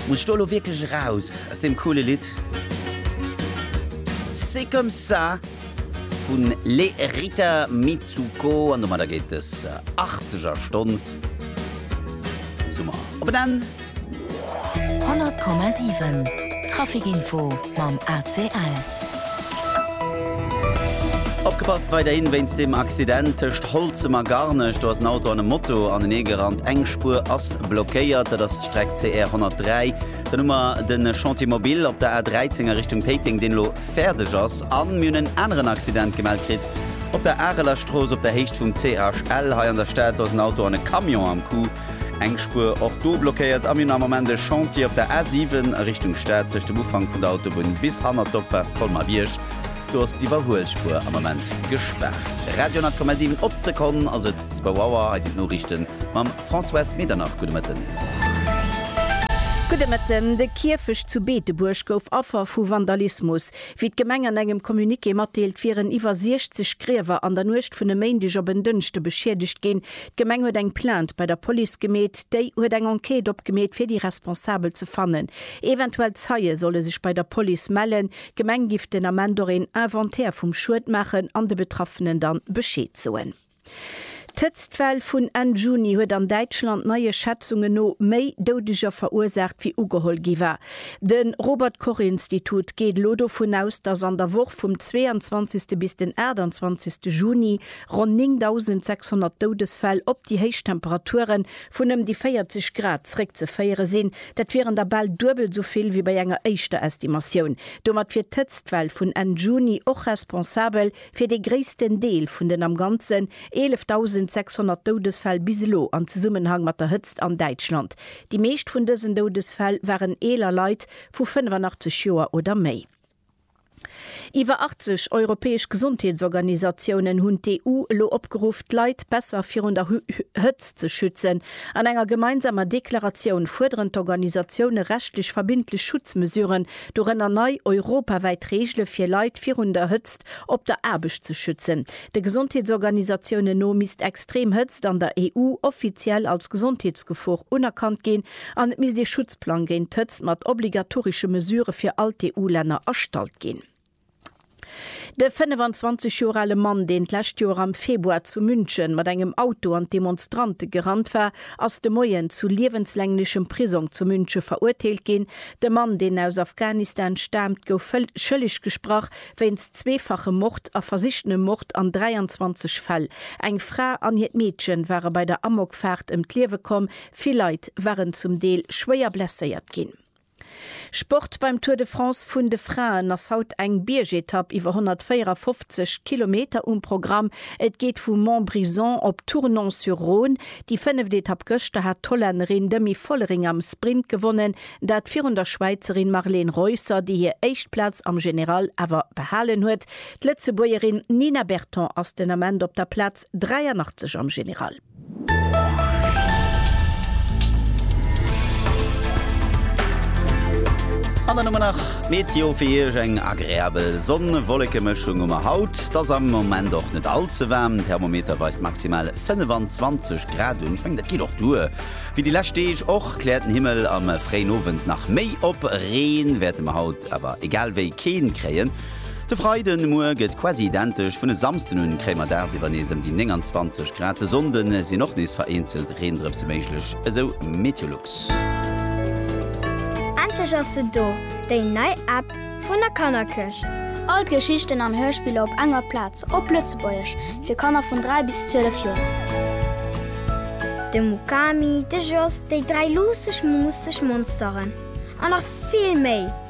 Muss ech do elo wierklech eraus aus deem coole Lidd? C'est comme ça vun Les Rita Mitsouko an domadder geet des 80er Stonn vum Summer op en Enn. 100,7 Trafic Info mam ACL. Opgepasst, weiderhin wéinst dem Accident tëscht Holzem a Garnech. Do ass en Auto an e Moto anenee gerannt. Eng Spuer ass blockéiert, dat ass d'Streck CR 103. Dann hu mer de Chantier mobile op der A 13 a Richtung Péiteng, deen elo fäerdeg ass. A mir hunn en aneren Accident gemellt kritt op der Areler Strooss op der Héicht vum CHL hei an der Stad. Do ass en Auto an e Camion am Coup. Eng Spuer och do blockéiert a mir hunn am Moment e Chantier op der A7 a Richtung Stad tëscht dem Ufank vun der Autobunn bis hanner d'Opfaart Colmar-Bierg. Do ass d'Iwwerhuelspuer am Moment gespaart. Radio 10,7 op d'Sekonn ass et zwou Auer. Hei sinn d'Noriichten mam Françoise Medernach. Gudde Mëtten. Gudde Mëtten. De Kierfecht zu Beetebuerg gouf Affer vu Vandalismus. Wéi d'Gemeng an engem Communiqué matdeelt, wieren iwwer 60 Griewer an der Nuecht vun e Méindeg op en Dënschde beschiedegt ginn. D'Gemeng huet eng Plainte bei der Police gemeet, déi huet eng Enquête opgemeet fir déi Responsabel ze fannen. Eventuell Zeie solle sech bei der Police mellen. D'Gemeng giff den Ament och een Inventaire vum Schued maachen an de Betraffenen dann Bescheed soen. D'Hëtztwell vun Enn Juni huet an Däitschland neie Schätzungen no méi Doudeger verursaacht wéi ugeholl gi war. De Robert Koch Institut geet elo dovun aus, dass an der Woch vum 22. bis den 28. Juni Ronn 9.600 Doudesfäll op déi héich Temperature vun ëm déi 40 Grad zréckzeféiere sinn. Dat wieren der bal duebel esou vill wéi bei enger éischter Estimatioun. Domat wier d'Hëtztwell vun Enn Juni och responsabel fir dee gréissten Deel vun den am Ganzen 11.600 Doudesfäll bis elo an Zesummenhang mat der Hëtzt an Däitschland. Déi meescht vun dësen Doudesfäll waren eeler Leit vu 85 Joer oder méi. Iwwer 80 europäesch Gesondheetsorganisatiounen hunn d'EU elo opgeruff, d'Leit besser virun der Hëtzt ze schützen. An enger gemeinsamer Deklaratioun fuerderen d'Organisatioune rechtlech verbindlech Schutzmesuren, dorënner nei europawäit Reegele fir Leit virun der Hëtzt op der Aarbecht ze schützen. De Gesondheetsorganisatiounen no misst extrem Hëtzt an der EU offiziell als Gesondheetsgefor unerkannt ginn An et misst ee Schutzplang géint d'Hëtzt mat obligatorische Mesurë fir all d'EU-Länner erstallt ginn. De 25 Joer ale Mann, deen d'lescht Joer am Februar zu München mat engem Auto an d'Demonstrante gerannt war, ass de Moien zu liewenslänglechem Prisong zu München verurteelt ginn. De Mann, deen aus Afghanistan staamt, gouf schëlleg gesprach wéinst zweefachem Mord a versichtenem Mord an 23 Fäll. Eng Fra an hiert Meedchen ware bei der Amokfaart ëm d'Liewe komm, Vill Leit waren zum Deel schwéier blesséiert ginn. Sport Beim Tour de France vun de Fraen ass haut eng Biergetapp iwwer 154 Kilometer um Programm. Et geet vu Montbrison op Tournon-sur-Rhône. Déi fënneft Etapp gëschter hat d'Hollännerin Demi Vollering am Sprint gewonnen, dat virun der Schwäizerin Marlene Reusser, déi hir éischt Plaz am General awer behalen huet. D'Lëtzebuergerin Nina Berton ass den Ament op der Plaz 83 am General. An dann hu mer nach d'Meteo fir Iech, eng agreabel Sonn-Wollekemëschung hu mer haut. Et ass am Moment och net all ze waarm, den Thermometer weist maximal 25 Grad un. Ech mengen, dat geet och duer wéi déi lescht Deeg. Och kläert den Himmel am fréien Owend nach méi op, Reen wäerte mer haut awer egal wéi keen kréien. De Freiden muer gëtt quasi identesch vun e Samsden un, kréie mer dagsiwwer nees ëm déi 29 Grad. De Sonnde sinn och nees vereenzelt Reendrëpse méiglech, esou Meteolux. Endlech ass se do, déi nei App vun der Kannerkirch! All d'Geschichten an Hörspiller op enger Plaz, op Lëtzebuergesch, fir Kanner vun 3 bis 12 Joer. De Mukami, de Jos, déi dräi luusseg, muusseg Monsteren an nach vill méi!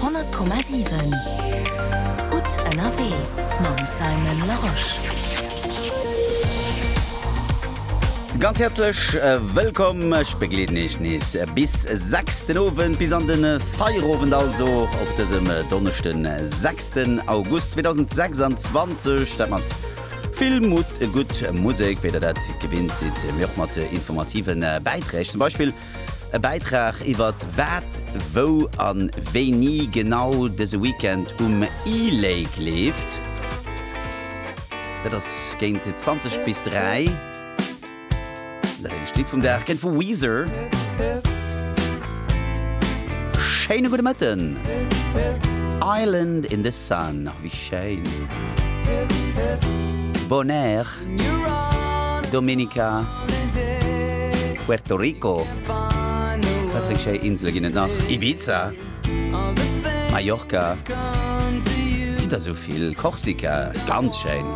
100,7 Gutt ënnerwee mam Simon Larosche. Ganz häerzlech wëllkomm. Ech begleeden iech nees bis 6 den Owend, bis an de Feierowend also op dësem Donneschden, 6 den August 2026. Dat mat vill Mutt, gutt Musek, wéi der dat gewinnt sidd, mee och mat informative Bäiträg, zum Beispill E Bäitrag iwwert wat, wou an wéini genau dëse Weekend um E-Lake leeft. Dat ass géint 20 bis 3. Dat éischt Lidd vum Dag kennt vu Weezer. Schéine gudde Mëtten. Island in the sun, wéi schéin. Bonaire. Dominica, Puerto Rico, wat fir schéi Insele ginn et nach? Ibiza, Mallorca, ginn der sou vill, Korsika, ganz schéin.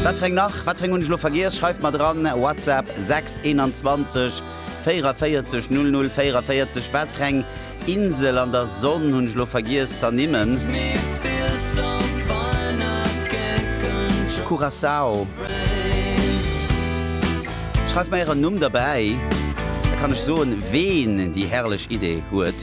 Wat fir eng nach? Wat fir eng hunn ech elo vergiess? Schreift mer dran, WhatsApp 6 21. 44 00 44 Wat fir eng Insel an der Sonn hunn ech lo vergiess z'ernimmen? Curaçao Schreift mer ären Numm derbäi, da kann ech soen, ween déi herrlech Idee huet.